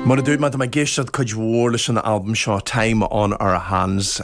Mar a dúirt mé, tá mé ag éisteacht cuid mhór leis an albam seo, Time on Our Hands.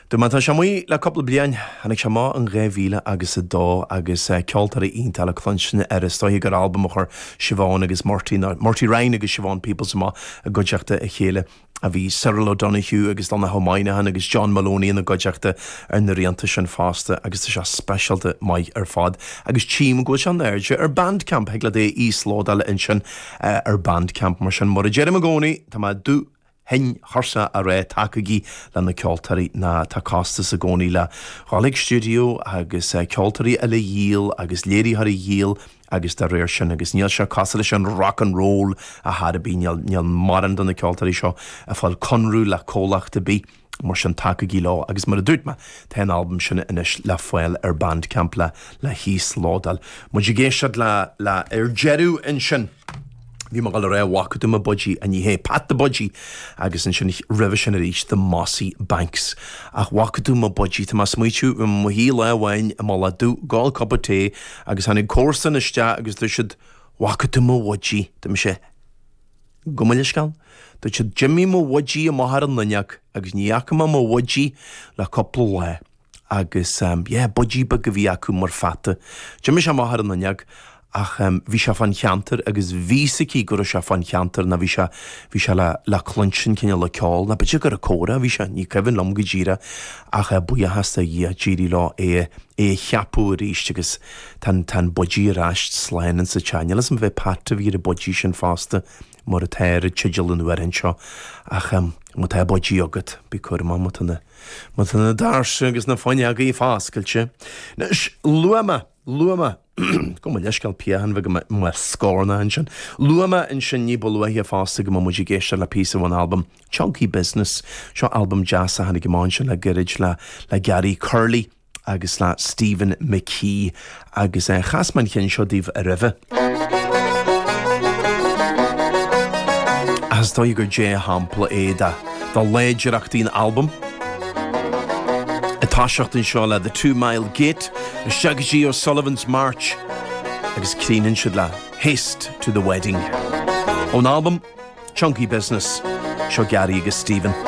Dúirt mé, tá sé amuigh le cúpla bliain, tháinig sé amach in dhá mhíle agus a dó, agus ceoltóirí iontacha le cluinstin air. Is dóiche gur albam a chuir Siobhán agus Murty, nó Murty Ryan agus Siobhán Peoples amach i gcuideachta a chéile. Bhí Cyril O'Donoghue agus Donncha Moynihan agus John Moloney ina gcuideachta ar na rianta sin fosta agus tá sé speisialta maith ar fad agus tchím go bhfuil sé in airde ar Bandcamp, thig leat é a íoslódáil ansin ar Bandcamp. Mar sin, mar a deirim i gcónaí, tá mé dubh tinn tuirseach a rá tacaígí le na ceoltóirí ná tá costas i gcónaí le dhul chuig stiúideo agus ceoltóirí eile a dhíol agus léiritheoirí a dhíol, agus dá réir sin agus níl sé cosúil leis an rock and roll a dhath ar bith, níl mórán de na ceoltóirí seo ag fáil conradh le comhlacht ar bith, mar sin tacaigí leo agus mar a dúirt mé tá an albam sin anois le fáil ar Bandcamp le híoslódáil. Muid ag éisteacht le ar deireadh ansin. Bhí mé ag dul a rá bhfaca tú mo budgie, a ní hé Pat the Budgie, agus ansin roimhe sin arís The Mossy Banks. Ach bhfaca tú mo budgie. Tá mé ag smaoitiú bhí mé i mo shuí lá amháin i Mullach Dubh ag ól cupa tae agus tháinig comharsan isteach agus dúirt siad Bhfaca tú mo bhudgie. Dúirt mise Gabh mo leithscéal. Dúirt siad D'imigh mo bhudgie amach ar an Luinneach agus ní fhaca mé mo bhudgie le cúpla lá. agus yeah budgie beag a bhí acu mar pheata. D'imigh sé amach ar an fhuinneog ach bhí sé fán cheantar agus bhí's aici go raibh sé fán cheantar ná bhí sé, bhí sé le, le cluinstin cineál le ceol ná b'fhéidir gur ag comhrá a bhí sé, ní cuimhin liom go díreah ach buíochas do Dhia d'éirigh leo é, é a cheapadh aríst agus tá an, tá an budgie ar ais slán insa teach. Níl a fhios arbh é Pat a bhí ar an budgie sin fosta. Mar atá ar an teideal an amhráin seo ach má tá budgie agat bí cúramach má tá na má tá na dairse agus na fuinneogaí foscailte. Anois luaigh mé luaigh mé gabh mo leithscéal piachán beag i mo scornach ansin luaigh mé ansin ní ba luaithe fosta go mbeadh muid ag éisteacht le píosa ón albam Chunky Business. Seo albam deas a tháinig chun an tí le gairid le le Gary Curley. agus le Stephen McKee agus chas mé an ceann seo daoibh roimhe. Ach is dóigh gur dea-shampla é de láidreachtaí an albaim. Ag toiseacht anseo le The Two Mile Gate, isteach go dtí O'Sullivan's March agus críochnann siad le Haste to the Wedding. Ón albam Chunky Business, seo Gary agus Stephen.